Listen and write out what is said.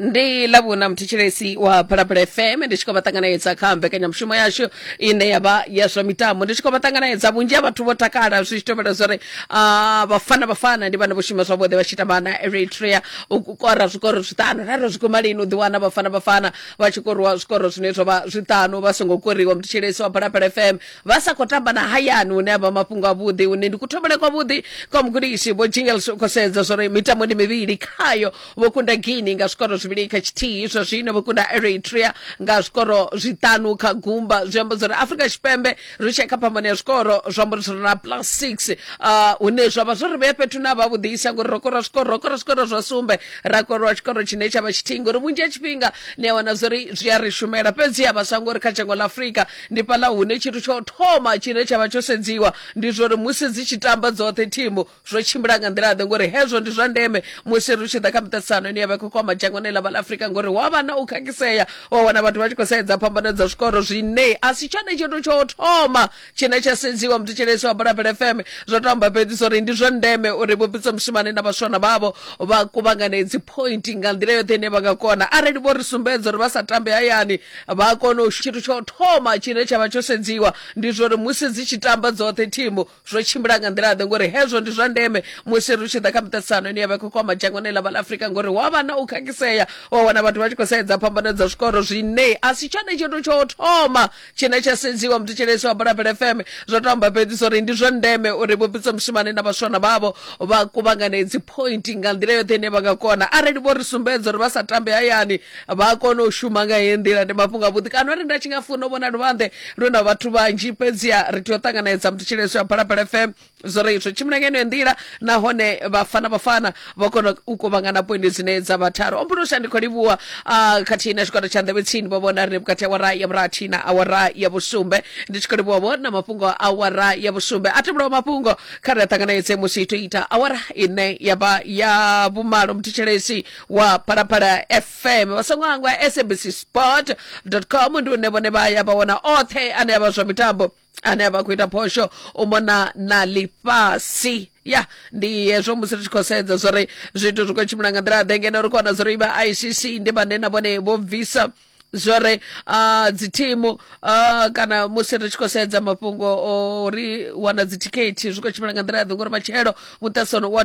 ndi lavhuna muthetshelesi wa phalaphala fm ndi tshi khou vha ṱanganedza kha mbekanyamushumo yashu ine ya vha ya zwa mitambo ndi tshi khou vha ṱanganedza vhunzhi ha vhathu vho takala zwi tshi tovhela zwa uri ah, vhafana vhafana ndi vhana vho shuma zwavhuḓi vha tshi tamba na eritrea u kora zwikoro zwiṱanu raro zwi guma lini u ḓiwana vhafana vhafana vha tshi koriwa zwikoro zwine zwa vha zwiṱanu vha songo koriwa muthetshelesi wa phalaphala fm vha sa khou tamba na hayani hune avha mafhungo avhuḓi hune ndi kuthomele kwavhuḓi kwa mugudisi vho jingles u khou sedza zwori mitambo ndi mivhili khayo vho kunda guini nga zwikoro zwivhili kha tshithihi zwa zwino vho kunda eritrea nga zwikoro zwiṱanu kha gumba zwi amba zwori afrika tshipembe ri tshee kha phambano ya zwikoro zwi amba uri zwi na plus six uh, hune zwa vha zwo ri vhea fhethu na vha vhuḓisa ngori ro kora zwikoro ro kora zwikoro zwa sumbe ra korwa tshikoro tshine tsha vha tshithihi ngori vhunzhi ha tshifhinga ni a wana zwori zwi a ri shumela fhedzi ha vhaswa ngori kha dzhango ḽa afrika Ndi fhaḽa hune tshithu tsha u thoma tshine tsha vha tsho sedziwa ndi zwa uri musi dzi tshi tamba dzoṱhe thimu zwo tshimbila nga nḓila-ḓe, ngori hezwo ndi zwa ndeme musi ri tshi ḓa kha miṱaṱisano ine ya vha i khou kwama dzhangoni ḽa vha ḽa Afrika, ngori hu a vha na u khakhisea wa wana vhathu vha tshi khou sedza phambano dza zwikoro zwine a si tshone tshithu tsha u thoma tshine tsha sedziwa. Muthetshelesi wa Bulabela FM zwo tou amba fhedzi zwa uri ndi zwa ndeme uri Vho Pitso Mosimane na vhaswana vhavho vha kuvhangane dzi point nga nḓila yoṱhe ine vha nga kona arali vho ri sumbedza uri vha sa tambe hayani vha kona u tshithu tsho thoma tshine tsha vha tsho sedziwa ndi zwori musi dzi tshi tamba dzoṱhe thimu zwo tshimbila nga nḓila ḓe ngori hezwo ndi zwa ndeme musi ri tshi ḓa kha miṱaṱisano ine ya vha khou kwama dzhangoni ḽa vhala afurika ngori wa vha na u khakhisea wa wana vhathu vha tshi khou sedza phambano dza zwikoro zwine a si tshone tshithu tsho thoma tshine tsha sedziwa muthetsheleisi wa bulabela fm zwo to amba fhedzi uri ndi zwa ndeme uri vhupitsa mushumane na vhaswana vhavho vha kuvhangane dzi point nga nḓila yoṱhe ine vha nga kona arali vho ri sumbedza uri vha sa tambe hayani vha kone u shuma nga heyi nḓila ndi mafhungo avhuḓi kana ri nda tshi nga funa u vhona luvhanḓe lu na vhathu vhanzhi fhedziha ri tea u ṱanganedza muthu tshileswa phalaphala fm zwo ri zwo tshimbila ngeno nḓila nahone vhafana vhafana vha kona u kovhangana poindi dzine dza vha tharu ombuno shandi khou livhuwa ah, khathihi na tshigwada tsha nḓevhe tsini vho vhona ri vhukati awara ya vhurathi na awara ya vhusumbe ndi tshi khou livhuwa vho na mafhungo a awara ya vhusumbe a tevhulaho mafhungo kha ri a ṱanganedze musi ito ita awara ine ya vha ya vhumalo mthetshelesi wa phalaphala fm vha songo hangwa sabc sport com ndi une vhone vha ya vha wana oṱhe ane avha zwa mitambo ane avha khou ita phosho u mona na ḽifhasi ya ndi hezwo musi ri tshi khou sedza zwori zwithu zwi khou tshimbila nga nḓila ḓe ngeno ri khou wana zwori vha icc ndi vhane na vhone vho bvisa zwore uh, dzithimu uh, kana musi ri tshi khou sedza mafhungo o ri wana dzithikhethi zwi khou tshimbila nga nḓila ya ḓe ngori matshelo muṱasano wa